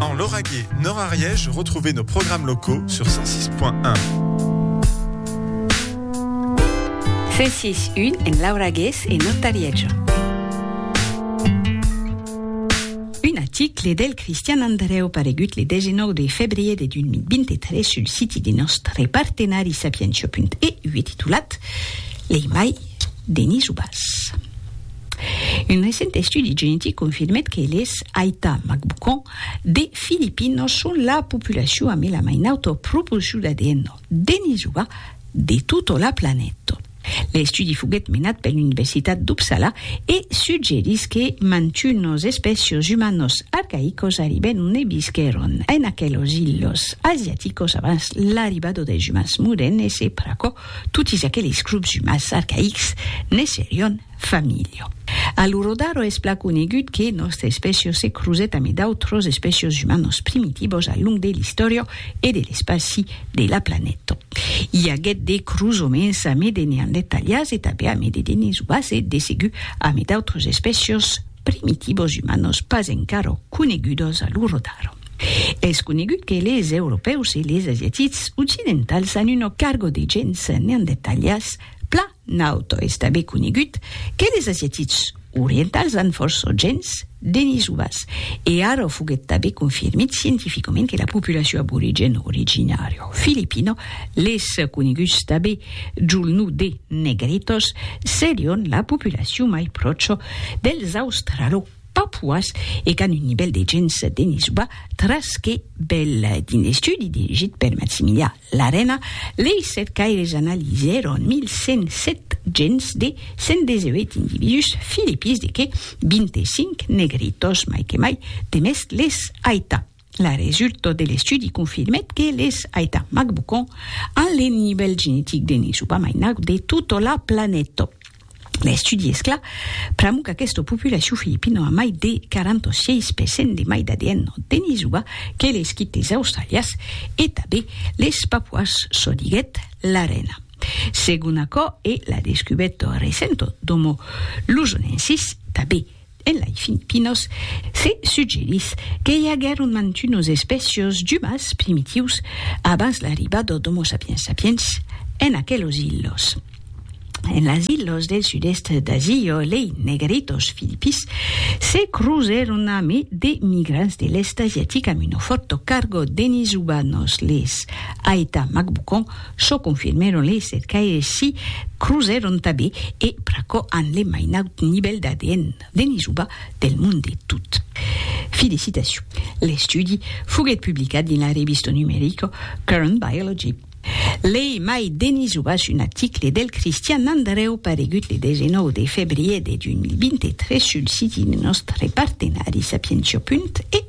En Lauragais, Nord Ariège, retrouvez nos programmes locaux sur 106.1. 106.1 en Lauragais et Nord Ariège. Un article del Christian Andreu paregut le 19 de febrier de 2023 sul siti de nostre partenari sapientia.eu e titulat Lei mai Denis Ubas. Un recent estudi genetic confirmèt que les Aita Macbucon de Filipinos son la populacion a mela mai nauta proporcion d'ADN denisoa de tota la planeta. L'estudi foguèt menat per l'Universitat d'Uppsala e suggerís que mantunos espècios umanos arcaïcos arribèron e visquèron en aquelos ilhos asiaticos abans l'arribada dels umans modernes e pr'aquò totis aqueles grops umans arcaïcs ne serion Familio. A lo Rodaro es plan conegut que nòstre espècio se crusèt amé d'autros espècios umanos primitivos al long de l'istòria e de l'espaci de la planeta. I aguèt de crusoments amé de neandertalians e tanben amé de denisovas e de segur amé d'autros espècios primitivos umanos pas encara conegudos a lo Rodaro. Es conegut que les europèus e les asiatics occidentals an una carga de gens neandertalians plan Naut es tanben conegut que les asiatics orientals an fòrts o gens denisovas, e ara foguèt tanben confirmit scientificament que la populacion aborigèn originària filipina, les coneguts tanben jol nom de Negritos, serion la populacion mai pròcha dels australopapuas e qu'an un nivèl de gens denisova tras que bèl d'un estudi dirigit per Maximilià L'arena lei sèt caires analisèron 1.107 gents de 118 individús filipís de qué 25 negritos mai que mai de mest les aita. La resulta de l'estudi confirmèt que les aita macbucon an le nivèl genetic de ne subamainau de tota la planeta. L'estudi es clar, pr'amor qu'aquesta populacion filipina a mai de 46 per cent de mai d'ADN en Denisova que les quites australias e tanben les papuas, çò diguèt Larena. Segon aquò e la descubèrta recenta d'Homo luzonensis, tanben En lai Filipinos se suggerís que i aguèron mantunos espècios d'umans primitius abans l'arribada d'Homo sapiens sapiens en aquelos ilhos. En las ilhos del sud-èst d'Asia, lei Negritos filipis se crosèron ame de migrants de l'èst asiatic amb uno fòrto cargo denis ubanos, les Aeta Macbucon, Çò confirmèron lei cercaires si crusèron tabé e pr'aquò an le mainaut nivèl d'ADN de Nisuba del mond de tot. Fi de citacion. L'estudi foguèt publicat dins la revista numerica Current Biology. Lei mai de Nisuba sus un article del Cristian Andrèu paregut le 19 de febrièr de 2023 sul siti de nòstre partenari Sapientia. E.